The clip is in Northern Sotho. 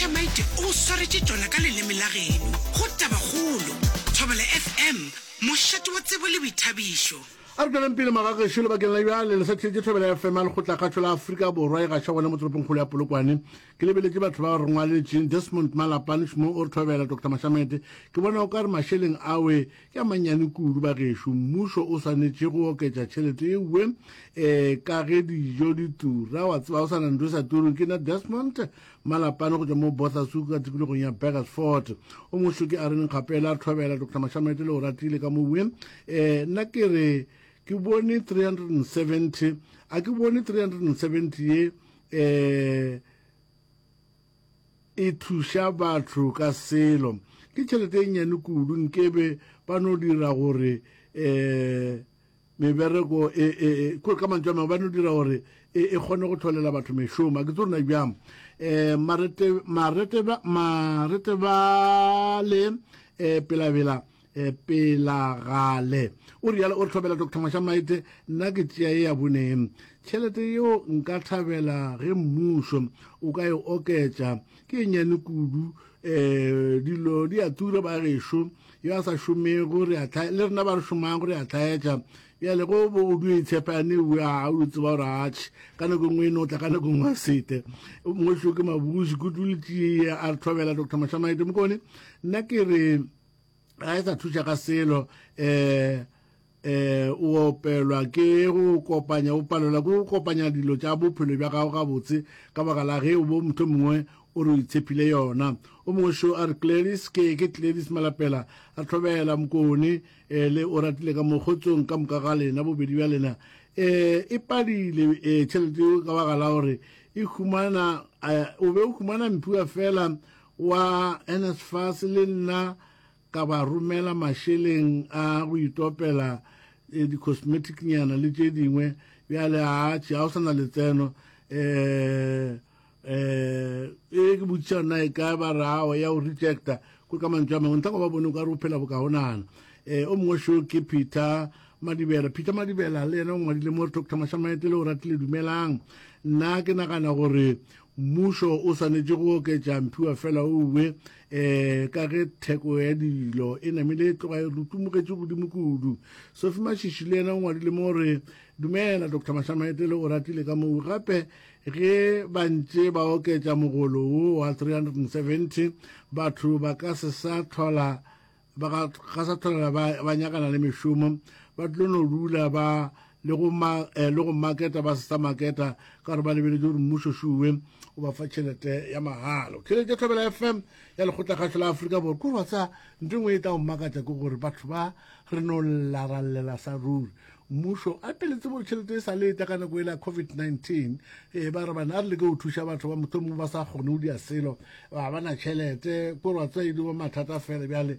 Tamaite o swaretše tšona ka leleme la geno. Go tabakgolo. Thobela FM, mošate wa tsebo le boithabišo. A re tšweleng pele magagešo lebakeng la bjale le sa theetše Thobela FM ya Lekgotlakgašo la Afrika Borwa e gaša gona mo toropongkgolo ya Polokwane. Ke lebeletše batho ba re ngwaletšeng, Desmond Malapane, Shmoo o re Thobela, Doctor Mashamete. Ke bona o ka re mašeleng awe ke a mannyane kudu bagešo, mmušo o swanetše go oketša tšhelete ewe um ka ge dijo di tura, wa tseba o sa na ntho e sa tureng. Ke na Desmond Malapane go tšwa mo Bothasu ka tikologong ya Burgersfort o mošoki a re nkgapela a thobela Dr Mashamete le Oratile ka mo bue eh nna ke re ke bone 370 a ke bone 370 ye eh e thuša batho ka selo ke tšhelete e nnyane kudu nkebe ba no dira gore eh Mebereko e, e, e, kore ka mantswe a mangwe ba no dira gore e, e kgone go tlholela batho mešomo a ke tse rona bjang um maretebale um eh, pelabela um eh, pelagale o rialo o re tlhobela doctor mašamaete nna ke tšea e ya boneng tšhelete yeo nka thabela ge mmušo o ka e oketša Ke nnyane kudu, um dilo di a tura bagešo, yo a sa šomego re a tlhae, le rena ba re šomago re a tlhaetša. Bjale go bo o dio itshepa yane ewe a o tseba gore atšhe ka nako e nngwe e no tla ka nako e nngwe a sete o mongwe šo ke mabuši kudu le tšee a re thobela doctor mashamaete mokone nna ke re ga e sa thuša ka selo um Eh, o opelwa ke go kopanya, o palelwa ke go kopanya dilo tša bophelo bja gago gabotse ka baka la ge o bo motho mongwe o re o itshepile yona. O mongwe šo a re, Gladys, ke, ke Gladys Malapela, a tlhobela mokone, eh, le o ratile ka mo kgotsong ka moka ga lena, bobedi bja lena. Eh, e padile, eh, tšhelete yeo ka baka la gore e humana, eh, o be o humana mpiwa fela wa NSFAS le nna, ka ba romela mašeleng a go itopela eh, di-cosmetic nyana le tše dingwe bjale atšhe ga o sa na letseno um eh e ke botšiša nna e ka ba rao ya o rejecta ko ka mantswe a mangwe ntlha go ba bone o ka re o phela bokagonana um o mongwe sho ke peter madibela peter madibela le yena o ngwadile mo re doctor mašamaete le o ratile dumelang nna ke nagana gore Mmušo o swanetše go oketša mphiwa fela o uwe, ee, ka ge theko ya dilo e namile e tloga e rutumugetše godimo kudu. Sophie Mashishi le yena o ngwadile mo re, Dumela, Doctor Mahlamaetele o ratile ka moo gape ge ba ntše ba oketša mogolo wo wa 370, batho ba ka se sa tlhola ba ga gasathana ba ba nyakana le mešomo ba tlo no dula ba le go ma eh, le go marketa ba sa marketa ka gore ba lebeletse gore mmuso shuwe o ba fa tšhelete ya magalo tšhelete ya thobela fm ya lekgotla kgatlho la aforika borwa ko batsa nto ngwe e tla go makatsa ke gore batho ba re no llarallela sa ruri Mmušo a teletse mo tšhelete e sa le etla ka nako e la COVID-19 e ba re bana a re leke go thuša batho ba mohlomongwe ba sa kgone go dia selo ba ba na tšhelete ko rwa tswa e di bo mathata fela bjale